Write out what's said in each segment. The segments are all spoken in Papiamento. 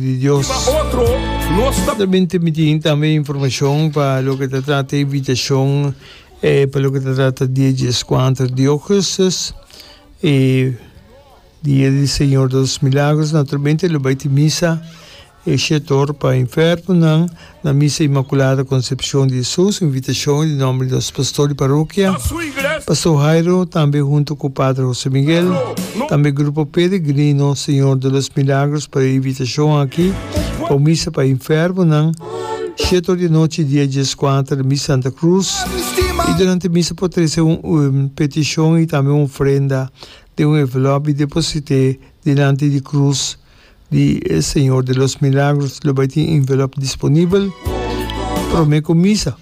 di Dios. Nan ta bin timiti tin tambe informashon pa loke ta trata invitashon pa loke ta trata Dia di Eskuanter di Ougustus i Dia di Señor de los Milagros. Naturalmente lo bai tin misa e shetor pa enfermonan. Na Misa Inmaculada Concepcion di Jesús, invitacion di nomber di nos Pastor di Parokia, Pastor Jairo, tambe hunto cu Pater Jose Miguel, tambe Grupo Peregrino Señor de los Milagros pa e invitacion aki pa un Misa pa enfermonan, shiet or di anochi dia dies cuater na Misa Santa Cruz, y durante Misa por trece un peticion y tambe un ofrenda den un envelop y deposite dilanti di Cruz Di e Señor de los Milagros lo bai tin envelop disponibel prome ku misa.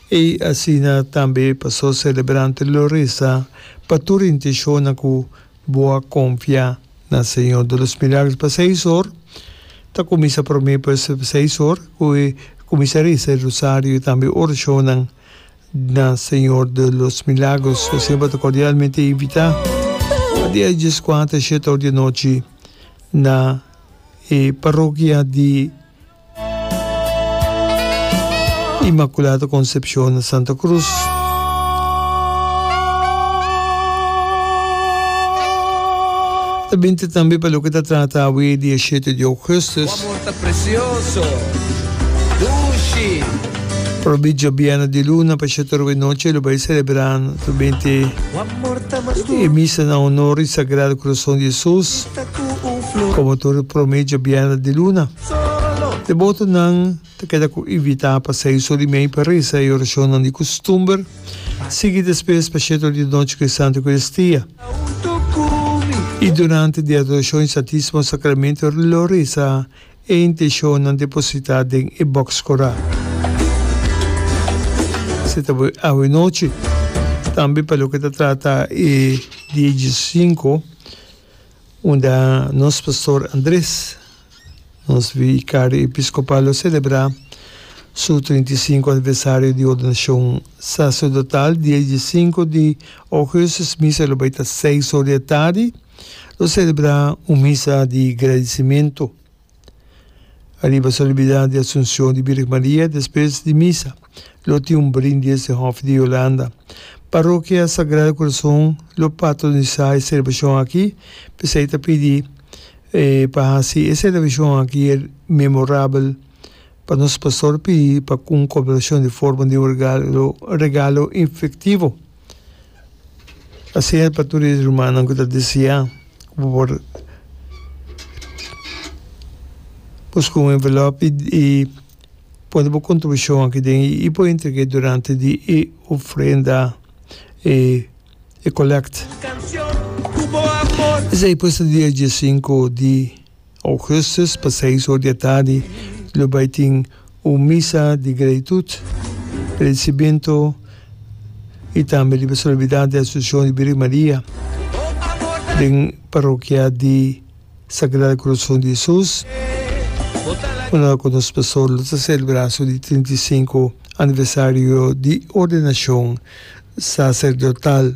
E asina tambe pasó selebrante lo resa pa tur intenshonnan ku bo a konfia na Señor de los Milagros. Pa seis or ta kuminsa prome, pues seis or ku e kuminsa resa e rosario i tambe orashonnan Na Señor de los Milagros bo semper ta cordialmente invita pa di a djes kuart a shet or di anochi na e parokia di Imaculada Concepcion na Santa Cruz. Ta binte tambe pa loke ta trata awe di a shete di Augustus. Probit Djobièrnu di luna pa shatoru e nochi lo bai selebrá nutubente e misa na honor di Sagrado Corazon di Jesus como tur e prome Djobièrnu di luna. Debotonan ta keda cu invitá pa sai so di mei pa reza e oracionnan di custumber, sigui despues pa shatoru di nochi cu e Santa Eucaristia y durante di Adoracion y Santisimo Sacramento lo reza e inteshonnan depositá den e bòks korá. Si ta bo e awe nochi, tambe pa loke ta trata e dia diesinko unda nos pastor Andres, nos vikario episkopal lo selebrá su trinta i sinku aniversario di ordenashon saserdotal, dia diesinko di ogesis misa lo bai ta seis or di e tardi. Lo selebrá un misa di gradisimentu ariba Solemnidad di Asunción di Birgen Maria. Despues di misa lo tin un brindis den Hof di Yolanda. Parrokia Sagrado Corazón lo patronisá e celebracion aki, p'esei ta pidi e pa haci e celebracion aki memorabel pa nos Pastor pidi pa un cooperacion di forma di un regalo regalo infectivo. Asina e pa tur e rumannan ku ta desiá ku bo por buska un envelop i i pone bo kontribushon aki den i por entrega e durante di e ofrenda e e kolèkt. Esei pues ta dia dies sinku di. Augustus pa seis or di e tardi lo bai tin un misa di gratitud, agradecimento y tambe di solemnidad di Asunción di Virgen Maria den Parokia di Sagrado Corazon di Jesus, unda cu nos Pastor lo ta celebra su di trinta y sinku aniversario di ordenacion sacerdotal.